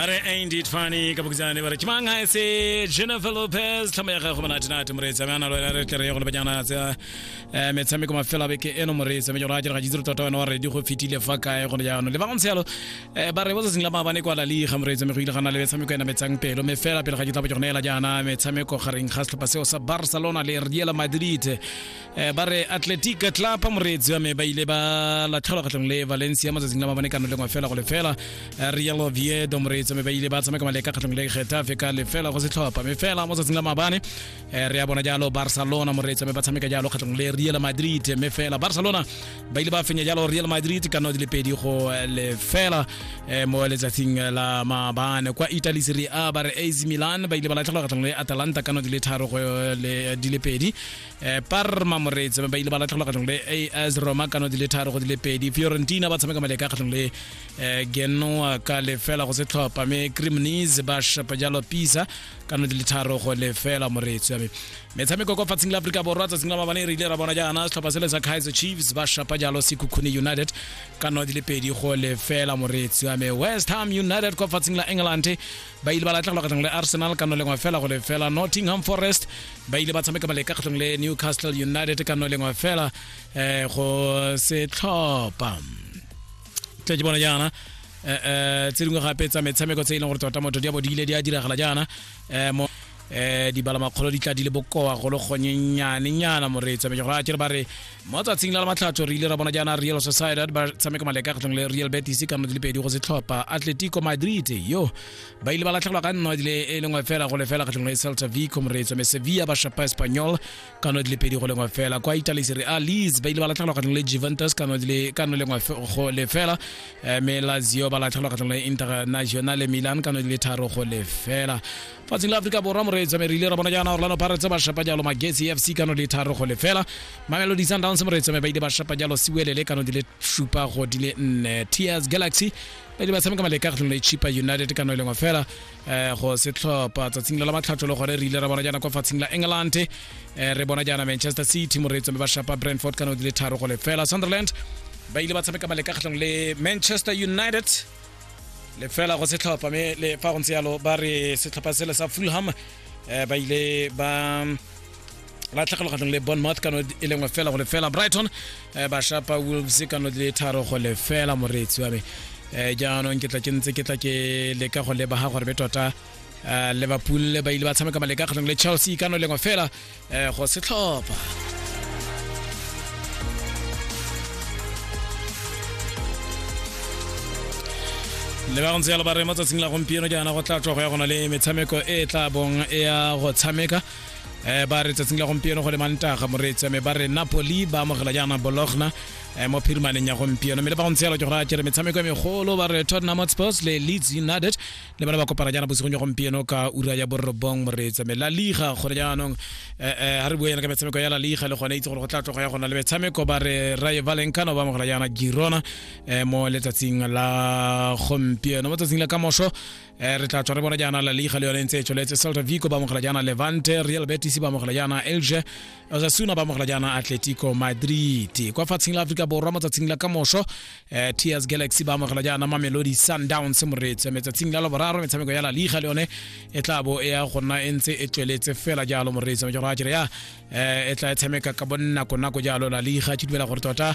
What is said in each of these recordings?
are aindy tfani ka bokitsane bare kimang ga se jennifer lopez tlhamo ya gago monate nate moreetsa me a na lo ena re tlere ya gone banyana tsa eh, metshameko mafelo a beke eno moreetsa me jona a direga jitsiro tota wena wa redi go fetile fa kae gone jaanong le ba go ntse yalo eh, ba re botsatsing la maabane kwa lali ga moreetsa me go ile ga na le metshameko ena metsang pelo me fela pele ga ke tla bo ke gone ela jaana metshameko gareng ga setlhopha seo sa barcelona le real madrid eh, ba re atletic club moreetsi wa me ba ile ba latlhelwa kgatlhong le valencia matsatsing la mabane kano lengwe fela go lefela eh, real oviedo moreetsi wa me ba ile ba tshameka maleka kgatlhong le getafe ka lefela go setlhopha me fela matsatsing la mabane eh, re ya bona jalo barcelona moreetsi wa me ba tshameka jalo kgatlhong le real madrid me fela barcelona ba ile ba fenya jalo real madrid ka nao di le pedi go lefela mo letsatsing la mabane kwa italy serie a ba re ac milan ba ile ba latlhelwa kgatlhong le atalanta ka nao di le tharo go le di le pedi eh parma moreetsi ba ile ba latlhelwa kgatlhong le as roma kano di le tharo go di le pedi fiorentina ba tshameka maleka kgatlhong le eh, genoa ka lefela go setlhopha mme crimnis ba shapa jalo pisa kano di le tharo go lefela moreetsi ame metshameko kwa fatsing la aforika borwa tsatsing la mabane re ile ra bona jaana setlhopha sele sa kaizer chiefs ba shapa jalo sekhukhune united kano di le pedi go lefela moreetsi ame west ham united kwa fatsing la england ba ile ba latlhegelwa kgatlhong le arsenal ka no lengwe fela go le fela nottingham forest ba ile ba tshameka maleka kgatlhong le newcastle united ka no lengwe fela um go setlhopha tle ke bona jaana um tse dingwe gape tsa metshameko tse e leng gore tota motho di a bo di ile di a diragala jaana um um dibalamakgolo di tla di le bokoa go le gonyenyanenyana moreetsa me gore a kere ba re mo tsatsing la la matlhatso re ile ra bona jaana real society ba tshameka maleka kgatlhong le real betis ka nno di le pedi go setlhopha atletico madrid yo ba ile ba latlhegelwa ka nno dile e lengwe fela go le fela kgatlhong le celta vico moreetsa me sevilla ba shapa espanyol ka nno di le pedi go lengwe fela kwa italy sere a leas ba ile ba latlhegelwa kgatlhong le juventus ka nno dile ka nno lengwe go le fela me lazio ba latlhegelwa kgatlhong le international milan ka nno di le tharo go le fela fatsing la aforika borwa moreetsi wa merile ra bona jaana orlando pirates ba shapa jalo magesi fc kano di tharo go lefela mamelodi sundowns moreetsi wa mebaidi ba shapa jalo siwelele kano di le shupa go di le nne ts galaxy ba di ba tshameka maleka kgatlhong le chipa united kano e lengwe fela eh, go se tlhopha tsatsing la matlhatso le gore re ile ra bona jaana kwa fatshing la england eh, re bona jaana manchester city moreetsi wa ba shapa brentford kano di le tharo go lefela sunderland ba ile ba tshameka maleka kgatlhong le manchester united lefela go setlhopha mme le fa go ntse yalo ba re setlhopha sele sa fulham eh, ba ile ba latlhegelwa kgatlhong le bonmouth kano e lengwe fela go lefela brighton eh, ba shapa wolves kano di le tharo go lefela moreetsi wa me eh, jaanong ke tla ke ntse ke tla ke leka go lebaga gore be tota eh, liverpool ba ile ba tshameka maleka kgatlhong le chelsea kano e lengwe fela um go setlhopha le ba go ntse yalo ba re mo tsatsing la gompieno jaana go tla tswa go ya gona le metshameko e e tla bong e ya go tshameka um ba re tsatsing la gompieno go le mantaga moreetsi ame ba re napoli ba amogela jaana bologna um mo phirimaneng ya gompieno mme le ba go ntse yalo ke go raya kere metshameko e megolo ba re tottenham hotspurs le leeds united le bana ba kopana jaana bosigong jwa gompieno ka ura ya borobong moreetsa me la liga gone jaanong ga eh, eh, re bua yana ka metshameko ya la liga le gone itse gore go tla tloga ya gona le metshameko ba re raye valencano ba amogela jaana girona eh, mo letsatsing la gompieno mo tsatsing la ka moso re tla tswa re bona jaana la liga le yone ntse e tsweletse celta vico ba amogela jaana levante real betis ba amogela jaana elge osasuna ba amogela jaana atletico madrid kwa fatsheng la aforika borwa mo tsatsing la ka moso eh Tears Galaxy ba amogela jaana Mamelodi Sundowns moreetso metsatsing la loboraro metshameko ya la liga le yone e tla bo e ya go nna e ntse e tsweletse fela jalo moreetso metshameko ya jere ya eh, e tla e tshameka ka bonako nako jalo la liga ke dumela gore tota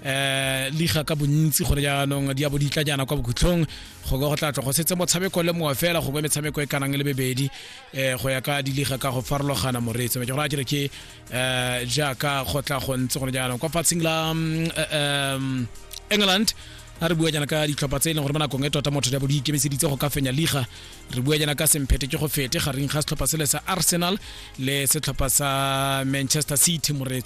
eh liga ka bontsi gore jaanong di ya bo di tla jaana kwa bokhutlhong go ka go tla tlo go setse motshameko le mongwe fela gongwe metshameko e kanang le bebedi eh go ya ka diliga ka go farologana moreetso metshameko ya jere ke um jaaka go tla go ntse gone jaanong kwa fatsheng la um, um england a re bua jana ka ditlhopha tse e leng gore mo nakong e tota motho jabo di ikemiseditse go ka fenya liga re bua jana ka semphete ke go fete gareng ga setlhopha sele sa arsenal le setlhopha sa manchester city moretsi